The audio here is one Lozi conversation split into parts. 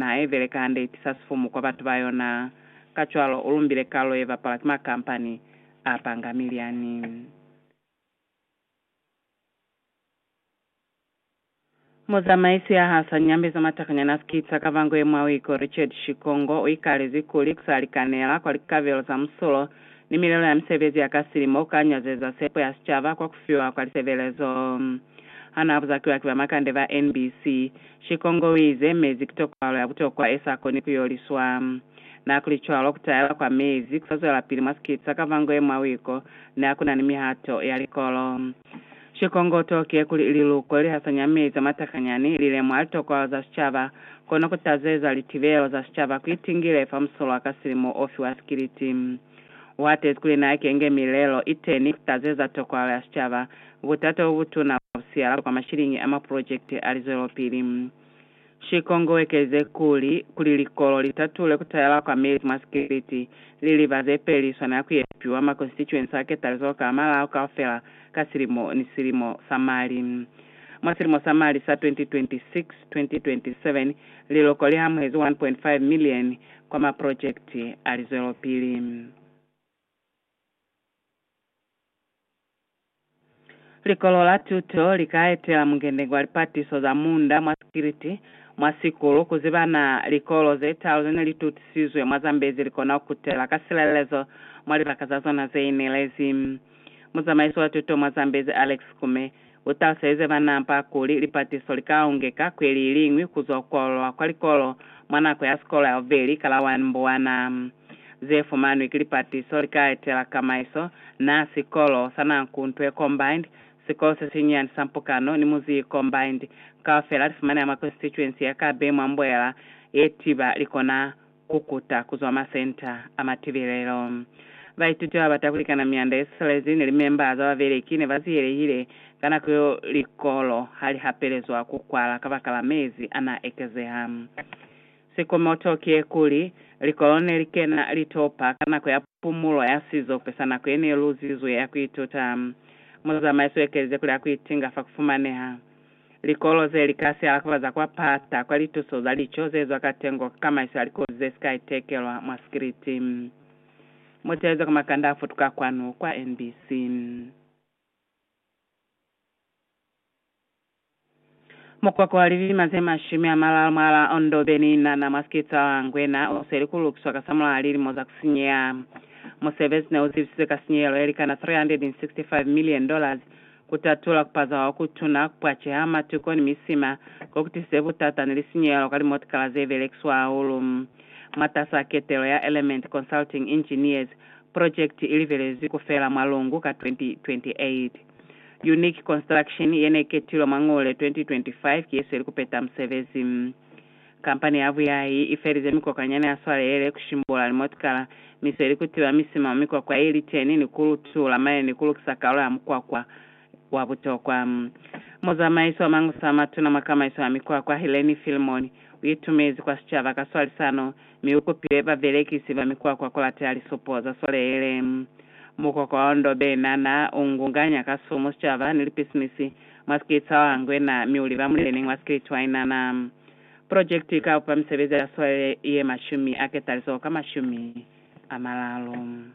Naha ye beleka hande ye tisa sifumu kwa batu ba yona. Kacwalo, u lumbile kalo ye bapalwa ki makampani a panga milyani. Muzamaisi ya ha sa nyambeza matakanyana a sikita ka bango ye mwa Wiko, Richard Shikongo, u ikalezi kuli ku sa likanela kwa likabelo za musulo ni milelo ya misebezi ya ka silimo ku ka nyazeza sepo ya sicaba kwa ku fiwa kwa lisebelezo. Ha naa buzakiwa ki ba makande ba NBC, Shikongo u ize, Mezi ki tokwalo ya butokwa e sa koni ku yo liswa. Na kuli cwalo, ku taela kwa mezi ku sa zwelapili mwa sikiti sa Kavangoe mwa wiko ne ha ku na ni mihato ya likolo. Shikongo u tokiye kuli liluko li hasanya mezi a matakanyani li lemuha litokwalo za sicaba, kono ku tazeza litibelo za sicaba ku itingile fa musolwa ka silimo o fiwa sikiliti. U hatezi kuli na kenge milelo iteñi ku tazeza tokwalo ya sicaba, Butata bobutuna bwa kusiala kwa mashiliñi a mapulojekiti a lizwelopili. Shikongo uekelizile kuli, Kuli likolo litatule kutayela kwa mezi mwa sikiliti, liliba zepeli swanela kuyepiwa ma constituency a ketalizo ka malao kaufela ka silimo ni silimo sa mali. Mwa silimo sa mali sa 2026-2027, liloko lihamuhezi 1.5 million kwa mapulojekiti a lizwelopili. Likolo la tuto li ka etela mungende kwa lipatiso za munda mwa sikiliti, mwa sikulu, ku ziba na likolo ze talu ze ne li tutisizwe mwa Zambezi li kona ku kutela ka silelezo mwa libaka za zona ze inelezi. Muzamaiso wa tuto mwa Zambezi, Alex Kume, U taluselize bana ba kuli lipatiso li ka ungeka kweli iliñwi ku zwa ku kwalulwa kwa likolo mwa nako ya sikolo ya bubeli ka la 1 Mbuwana. Ze fumanwi ki lipatiso li ka etela kamaiso na sikolo sa Nankuntwe Combined, sikolo se sinyani sa Mpukano ni Muziyi Combined. Kaufela li fumaneha mwa Konstituensi ya Kabe mwa Mbuela ye Tiba li kona ku kuta ku zwa masenta a matibelelo. Baituti ba ba bata ku likana mianda ye siselezi ni limemba za babeleki ne ba ziyelehile ka nako yo likolo ha li hapelezwa ku kwala kabakala mezi a n'a ekezeha. Sikomoto kiyekuli, likolo ne li kena litopa ka nako ya pumulo ya sizope sa nako ye ne luzizwe ya ku ituta. Muzamaiso u ekelize kuli a ku itinga fa ku fumaneha Likolo ze li ka si alakubaza kwa pata kwa lituso za lico ze zwa katengo ka kamaiso ya likoti ze si ka itekelwa mwa sikiliti. Muteze ku makanda a futuka kwanu kwa NBC. Mukoko wa lilima ze mashumi a malalu mwa la Ondo Beninana mwa Skitsa wa Ngwena u sweli ku lukiswa ka samulaha lilimo za ku sinyeha. Musebezi ne u zibisize ka sinyehelo ye likana 365 million dollars Kutatula kupaza kwa kutuna, kupwaceha matuko ni misima, kokutisize butata ni lisinyehelo ka limotikala zebelekiswa hahulu. Mwatas'a ketelo ya Element Consulting Engineers, purojekiti ilibelezwi kufela mwa Lungu ka 2028. Unique Construction, yeneiketilwe mwa Ngule 2025, ki yesweli kupeta musebezi. Kampani ya buyahi i felize mikokwanyana ya swalelele ku shimbola limotikala, misweli ku tiba misima mwa mikwakwa ye li teni ni ku lutula maye ni ku lukisa kalo ya mukwakwa wa butokwa. Muzamaisi wa mangusa a matuna mwa kamaiso ya mikwakwa, Helene Filmon, u itumezi kwa sicaba ka swalisano mi u kupile babelekisi ba mikwakwa ku lateha lisupo za swalelele. Mukwakwa wa Ondobena naa u ngunganya ka sumu sicaba ni lipisinisi mwa Skritshwa wa Ngwena mi u liba muleneñi wa Skritshwa inana. Projekiti i ka upa misebezi ya swalele ye mashumi a ketaliso ka mashumi a malalu.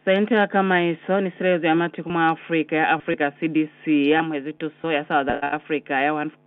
Sente ya Kamaiso ni Silelezo ya Matiku mwa Afrika ya Afrika, CDC, i amuhezi tuso ya South Africa ya 1.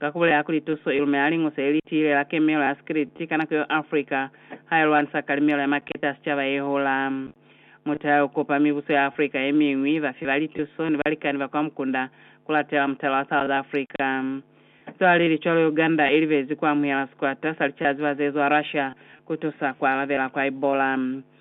ka ku bulela kuli tuso i lumela Liñusa le li Tiile la Kemelo ya Sikiliti ka nako yeo Afrika ha i lwanisa kalimelo ya maketa a sicaba ye hula. Mutala yo kopa mibuso ya Afrika ye miñwi, bafi ba lituso, ni balikani ba kwa mukunda ku latela mutala wa South Africa. Cwalelicwalo Uganda i libezi ku amuhela sikwata sa licaziba ze zwa Russia ku tusa ku alabela kwa Ebola.